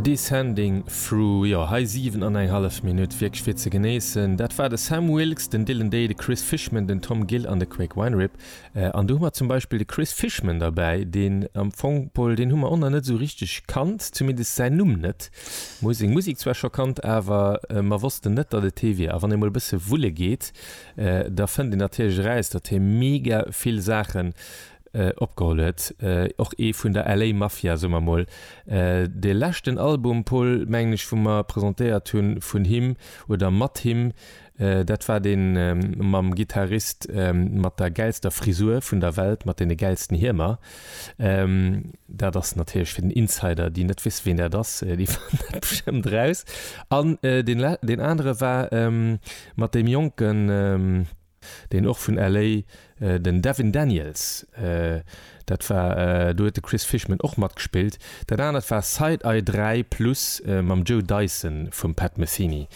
Descending Through, jo hei 7 an eng hallef Minutt wierklech fir ze genéissen. Dat war de Sam Wilkes, den Dylan Day, de Chris Fishman, den Tom Gill an de Craig Weinrib. An do hu mer zum Beispill de Chris Fishman derbäi, deen am Fong, Pol, deen hu mer och nach net esou richteg kannt, zumindest säin Numm net. Mer hu seng Musek zwar scho kannt, awer mer wossten net, datt et hie wier. A wann ee mol e bësse wulle geet, da fënnt een natierlech eraus, datt hie mega vill Saache Opgeholl huet. Och ee vun der LA Mafia, soe mer mol. De leschten Album, Paul, mengen ech, wou mer presentéiert hu vun him oder mat him, dat war dee mam Gitarrist mat der gäilster Frisur vun der Welt, mat deene gäilsten Hiemer. Dat ass natierlech fir den Insider, déi net wéss, wien dat ass, déi fannen dat bestëmmt eraus. An deen anere war mat deem jonken. deen och vun LA. Den Devin Daniels, dat war, do huet de Chris Fishman och matgespillt. Dat anert war Side Eye 3 plus mam Joe Dyson vum Pat Metheny,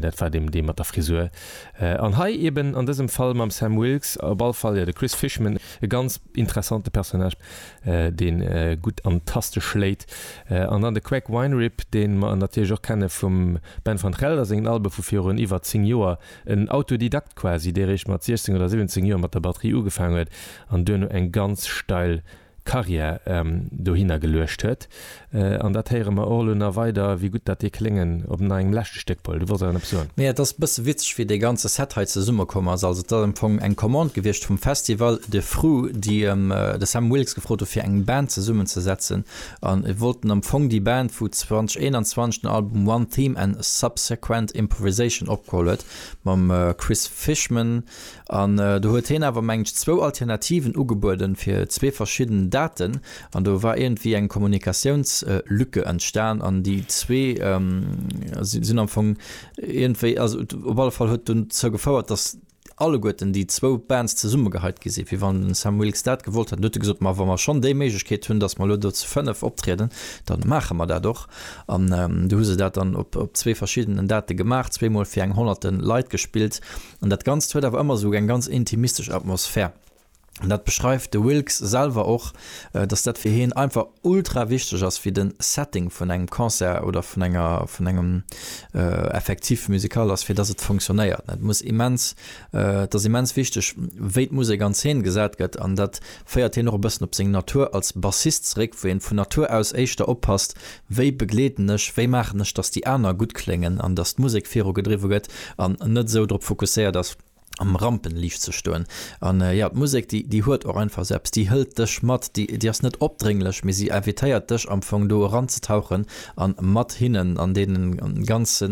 dat war dee mat der Frisur. An hei eben an dësem Fall mam Sam Wilkes, op all Fall, jo, de Chris Fishman, e ganz interessante Personnage, dee gutt an d'Taste schléit. An dann de Craig Weinrib, dee mer natierlech och kenne vum Ben van Gelder sengen Albe vu virun iwwer 10 Joer. En Autodidakt quasi, dee réischt mat 16 oder 17 Joer mat der Batterie ugefaang huet an duerno eng ganz steil Carrière dohinner geluecht huet. An dat héiere mer och elo nach weider, wéi gutt dat dee kléngen op nach engem leschte Stéck wollt. Du wollts awer nach eppes soen? Nee, et ass e bësse witzeg, wéi dee ganze Set hei zesumme komm ass. Also, et ass am Fong eng Commande gewiescht vum Festival de Fru, déi de Sam Wilkes gefrot hu fir eng Band zesummenzesetzen. an wollten am Fong déi Band vu 2021 den Album One Theme and Subsequent Improvisation opgeholl huet mam Chris Fishman an do huet heen awer mengen ech zwou Alternativen ugebueden fir zwee verschidden Daten an do war iergendwéi eng Kommunikatiounslücke entstan an déi zwee sinn am Fong iergendwéi also op alle Fall huet dozou gefouert dass alleguerten déi zwou Bands zesummegeheit gi sinn, wéi wann den Sam Wilkes dat gewollt hätt. An du huet e gesot, Ma wa mer schonn déi Méiglechkeet hunn, datt mer elo do zu fënnef optrieden, da maache mer dat och. An du hu se dat dann op zwee verschiddenen Date gemaach, zweemol fir eng honnerte Leit gespillt. An dat Ganzt huet awer ëmmer esou eng ganz intimistesch Atmosphär. An dat beschreift de Wilkes selwer och, dass dat fir hien einfach ultra wichteg ass, fir den Setting vun engem Concert oder vun enger, vun engem Effectif musical ass, fir dass et funktionéiert. Et muss immens, et ass immens wichteg, wéi d'Musek an Zeen gesat gëtt. An dat féiert hien och e bëssen op seng Natur als Bassist zeréck, wou een vun Natur aus éischter oppasst, wéi begleeden ech, wéi maachen ech, dass déi aner gutt kléngen an dass d'Musek viru gedriwwe gëtt an net esou drop fokusséiert ass, am Rampenliicht ze stoen. An jo, d'Musek, déi, déi huet och einfach esou eppes, déi hëlt dech mat, déi, déi ass net opdrénglech, mee si invitéiert dech am Fong do eranzetauchen an mat hinnen an deene ganze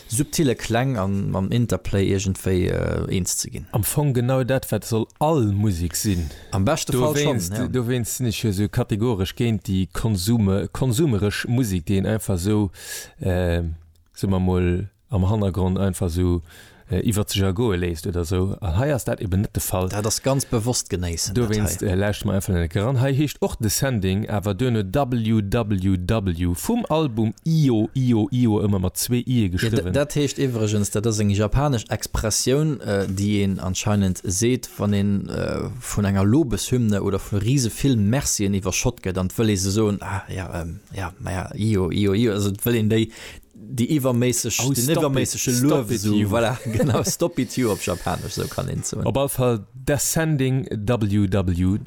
subtille Kläng an mam Interplay iergendwéi eens ze ginn. Am Fong genau dat, wat soll all Musek sinn. Am beschte Fall schonn, jo. Dowéinst sinn ech jo esou kategoresch géint déi konsume, konsumeresch Musek, déi een einfach esou, soe mer emol, am Hannergrond einfach sou iwwert sech ergoe léisst oder sou. An hei ass dat eben net de Fall. Dat ass ganz bewosst genéissen. Dowéinst lauschtert mer einfach nenne Keran. Hei heescht och Descending, awer duerno WWW vum Album Io, Io, Io, ëmmer mat zwee Ië geschriwwen. Dat heescht iwwregens, dat ass eng japanesch Expressioun, déi een anscheinend seet, wann ee vun enger Lobeshymne oder vu rise vill Mercien iwwerschott gëtt an et wëll ee se soen, ah, ja, ja, maja, Io, Io, Io, also et wëll een déi, Déi iwwerméisseg, den iwwerméissege Luewsum, voilà, genau, stop it you op Japanesch, esou kann een soen. Op all Fall Descending WWW.